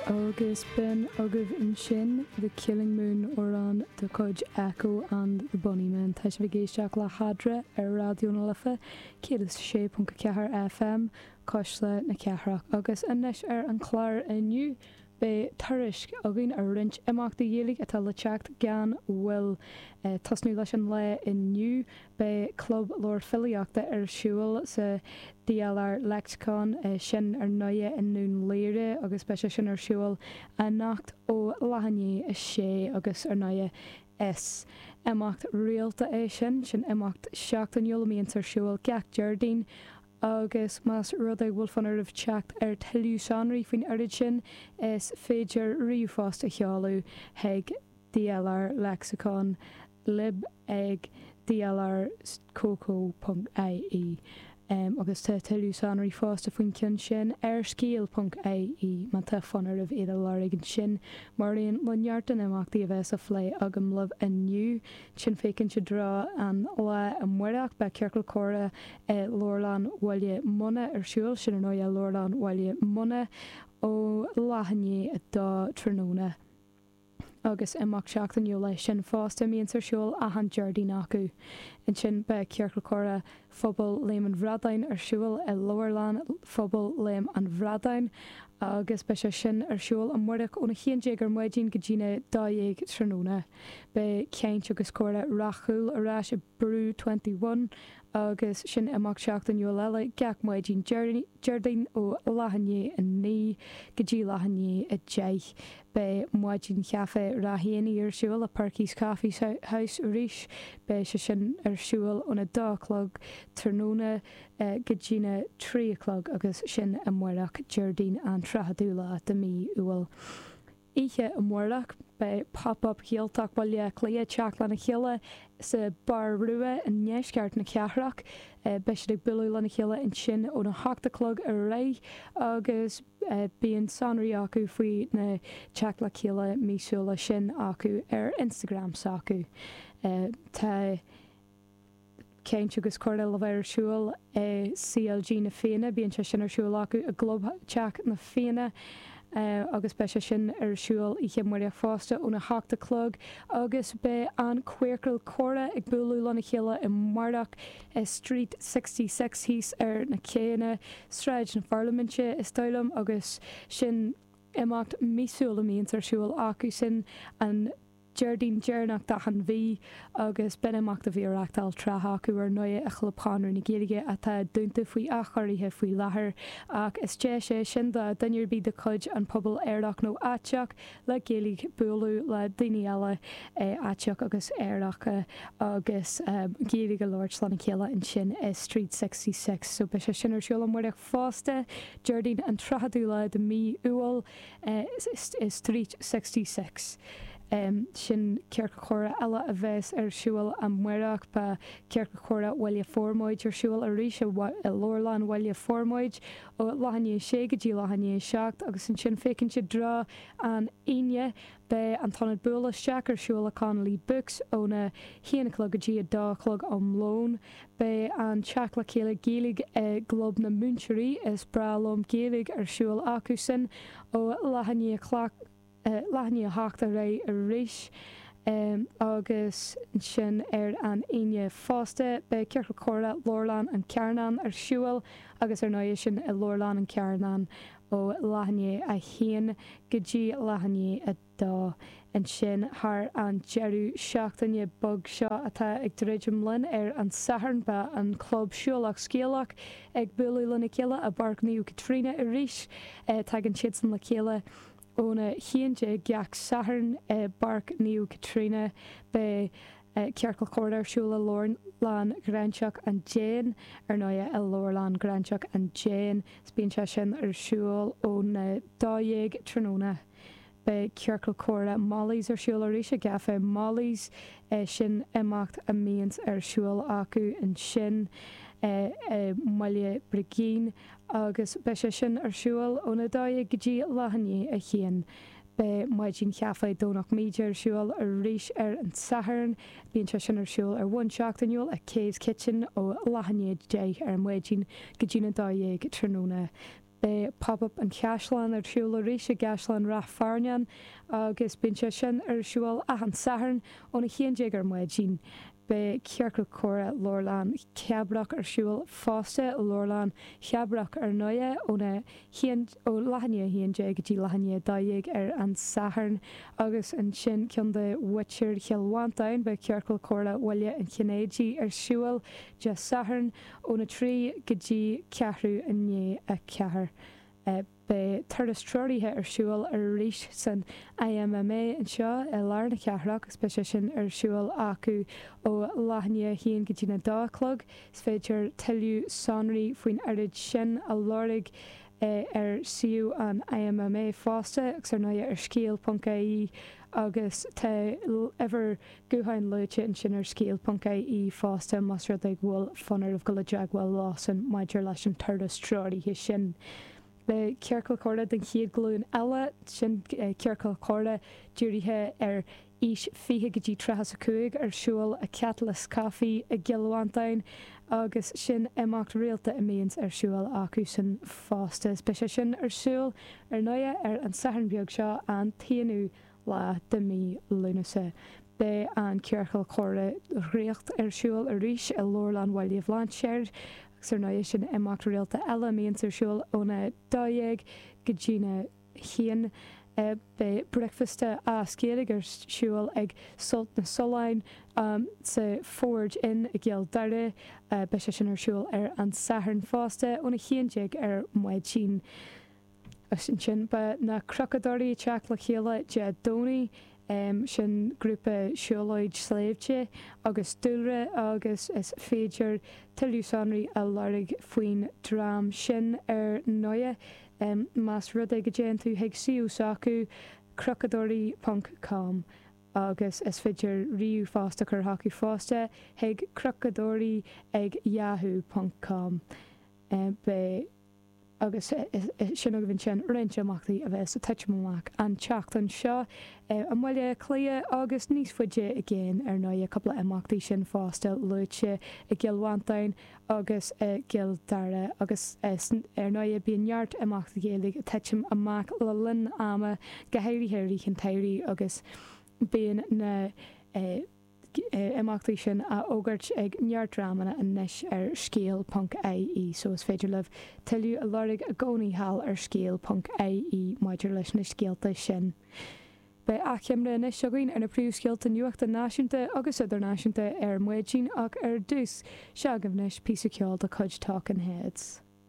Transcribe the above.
Agus b'in agaibh ansin The Killing Moon, amhrán de chuid Echo and the Bunnymen. Tá sibh ag éisteacht le hEadra ar Raidió na Life 106.4 FM, Cuisle na Cathrach. Agus anois ar an chlár inniu, beidh tuairisc againn ar roinnt imeachtaí Ghaeilge atá le teacht gan mhoill. Ag tosnú leis an lá inniu, Beidh Club Leabhar Filíochta ar siúl sa DLR Lexicon, é sin ar ndóighe i nDún Laoghaire agus beidh sé sin ar siúl anocht ó leath i ndiaidh a sé agus ar ndóighe is imeacht rialta é sin, sin imeacht seachtainiúil a mbíonns ar siúl gach Déardaoin agus más rud é go bhfuil fonn oraibh teacht ar tuilleadh sonraí faoin oiread sin is féidir ríomhphost a sheoladh chuig DLR Lexicon, lib. ag dlrcoco.ie agus tá tuilleadh sonraí fosta faoin cionn sin ar scéal.ie má tá fonn oraibh iad a lorg ansin. Mar aon le neart de na himeachtaí a bheas á phlé agam libh inniu, chun féachaint i dtreo an lá amáireach, beidh Ciorcal Comhrá i Leabharlann Bhaile Munna ar siúl, sin ar ndóigh i Leabharlann Bhaile Munna, ó leath i ndiaidh a dó tráthnóna. agus imeacht seachtainiúil é sin fosta a mbíonns ar siúl achan Déardaoin acu. Ansin beidh Ciorcal Comhrá Phobal Léim an Bhradáin ar siúl i Leabharlann Phobal Léim an Bhradáin agus beidh sé sin ar siúl amáireach ón 11 ar maidin go dtí na dó dhéag tráthnóna. Beidh Caint agus Comhrá Ráth Cúil ar ais i Brew Twenty One Agus sin imeacht seachtainiúil eile, gach maidin Déardaoin ó leath i ndiaidh a naoi go dtí leath i ndiaidh a deich, beidh Maidin Chaife Ráth Éanaí ar siúl i Perky's Coffee House arís. Beidh sé sin ar siúl ón a dó a chlog tráthnóna go dtí na trí a chlog agus sin amáireach Déardaoin an tríochadú lá de mhí Iúil. Oíche amárach, beidh Pop Up Gaeltacht Bhaile Átha Cliath ag teacht lena chéile sa Bar Rua i ndeisceart na cathrach. Beidh siad ag bualadh lena chéile ansin óna hocht a chlog ar aghaidh agus bíonn sonraí acu faoi na teacht le chéile míosúla sin acu ar Instagram s'acu. Tá. caint agus comhrá le bheith ar siúl i CLG Na Fianna. Bíonn sé sin ar siúl acu i gClubtheach na Fianna agus beidh sé sin ar siúl oíche amáireach fosta óna hocht a chlog agus beidh an Queercal Comhrá ag bualadh lena chéile amáireach i Street Sixty Six thíos ar na céanna, Sráid na Pharlaiminte is dóigh liom agus sin imeacht míosúil a mbíonns ar siúl acu sin an Déardaoin deireanach d'achan mhí agus b'in imeacht a bhí á reachtáil tráth acu ar ndóigh i Chlub Chonradh na Gaeilge atá dúnta faoi athchóirithe faoi láthair ach is deis é sin do dhuine ar bith de chuid an pobail aerach nó aiteach le Gaeilge bualadh le daoine eile aiteacha agus aeracha agus Gaeilge a labhairt lena chéile ansin i Street Sixty Six so beidh sé sin ar siúl amárach Fosta, Déardaoin an 30ú lá de mhí Iúil i Street Sixty Six, sin ciorcal comhrá eile a bheas ar siúl amárach. Beidh Ciorcal Comhrá Bhaile Formaid ar siúl arís i Leabharlann Bhaile Formaid ó leath i ndiaidh 6 go dtí leath i ndiaidh 7 agus ansin féachaint i dtreo an Aoine Beidh an tIonad Buail Isteach ar siúl i Connolly Books óna haon a chlog go dtí a dó a chlog am lóin. Beidh an teacht le chéile Gaeilge i gClub na Múinteoirí Is Breá Liom Gaeilge ar siúl acu sin ó leath leath i ndiaidh a hocht ar aghaidh arís agus ansin ar an Aoine fosta. Beidh Ciorcal Comhrá Leabharlann an Charnáin ar siúl agus ar ndóighe sin i Leabharlann an Charnáin. ó leath i ndiaidh a haon go dtí leath i ndiaidh a dó, ansin thar an deireadh seachtaine beag seo atá ag druidim linn. Ar an Satharn beidh an Club Siúlach Scéalach ag bualadh lena chéile i bPáirc Naomh Caitríona arís. Tagann siadsan le chéile óna haon déag gach Satharn i bPáirc Naomh Caitríona. Beidh. Ciorcal Comhrá ar siúl i Leabharlann Ghráinseach an Déin, ar ndóighe, i Leabharlann Ghráinseach an Déin, 's bíonn sé sin ar siúl óna dó dhéag tráthnóna. Beidh Ciorcal Comhrá Molly's ar siúl arís i gCafé Molly's, sin imeacht a mbíonns ar siúl acu ansin i mBaile Brigín, agus beidh sé sin ar siúl óna dó dhéag go dtí leath i ndiaidh a haon. Beidh Maidin Chaife Dhomhnach Míde ar siúl arís ar an Satharn. Bíonn sé sin ar siúl ar bhonn seachtainiúil i Kay's Kitchen ó leath i ndiaidh 10 ar maidin go dtína 12 tráthnóna. Beidh Pop Up an Chaisleáin ar siúl arís i gCaisleán Ráth Fearnáin agus bíonn sé sin ar siúl achan Satharn óna haon déag ar maidin. Beidh Ciorcal Comhrá Leabharlann Chabrach ar siúl fosta i Leabharlann Chabrach ar ndóighe óna haon ó leath i ndiaidh 11 go dtí leath i ndiaidh 12 ar an Satharn agus ansin Co. muintir Chill Mhantáin, beidh Ciorcal Comhrá Bhaile an Chinnéidigh ar siúl Dé Sathairn óna 3 go dtí ceathrú i ndiaidh a ceathair. Beidh turas treoraithe ar siúl arís san IMMA anseo i lár na cathrach agus beidh sé sin ar siúl acu ó leath i ndiaidh 1 go dtína dó a chlog. Is féidir tuilleadh sonraí faoin ócáid sin a lorg ar suíomh an IMMA fosta agus, ar ndóigh, ar scéal ponc IE agus tá uimhir gutháin luaite ansin ar scéal ponc IE fosta más rud é go bhfuil fonn oraibh dul i dteagmháil leosan maidir leis an turas treoraithe sin. Beidh Ciorcal Comhrá den chéad ghlúin eile, sin Ciorcal Comhrá dírithe ar aois 20 go dtí tríocha is 5 ar siúl i Catalyst Coffee i gCill Mhantáin agus sin imeacht rialta a mbíonns ar siúl acusan fosta is beidh sé sin ar siúl ar ndóighe ar an Satharn beag seo an t-aonú lá de mí Lúnasa. Beidh an ciorcal comhrá Draíocht ar siúl arís i Leabharlann Bhaile Bhlainséir agus ar ndóighe sin imeacht rialta eile a mbíonns ar siúl óna dó dhéag go dtína haon. Beidh bricfeasta as Gaeilge ar siúl ag Sult na Sollán sa Forge Inn i gCill Dara. Beidh sé sin ar siúl ar an Satharn fosta ón 11:00 ar maidin. Agus ansin beidh Na Cnocadóirí ag teacht le chéile Dé Domhnaigh, sin grúpa siúlóid sléibhte agus dúlra agus is féidir tuilleadh sonraí a lorg faoin dream sin ar ndóigh. em más rud é go dtéann tú chuig suíomh s'acu, cnocadóirí ponc com, agus is féidir ríomhphost a chur chucu fosta chuig cnocadóirí ag yahoo ponc com, em beidh agus eh sin agaibh ansin roinnt imeachtaí a bheas ag titim amach an tseachtain seo eh i mBaile Cliath agus níos faide i gcéin ar ndóighe cúpla imeacht ansin fosta luaite i gCill Mhantáin agus i gCill Dara agus ar ndóigh bíonn neart imeachtaí Gaeilge ag titim amach le linn ama, go háirithe i rith an tsamhraidh agus bíonn na himeachtaí sin á fhógairt ag neart dreamanna anois ar scéal ponc IE so is féidir libh tuilleadh a lorg i gcónaí thall ar scéal ponc IE maidir leis na scéalta sin. Beidh achoimre anois againn ar na príomhscéalta nuachta náisiúnta agus idirnáisiúnta ar maidin ach ar dtús, seo daoibh anois, píosa ceoil de chuid Talking Heads.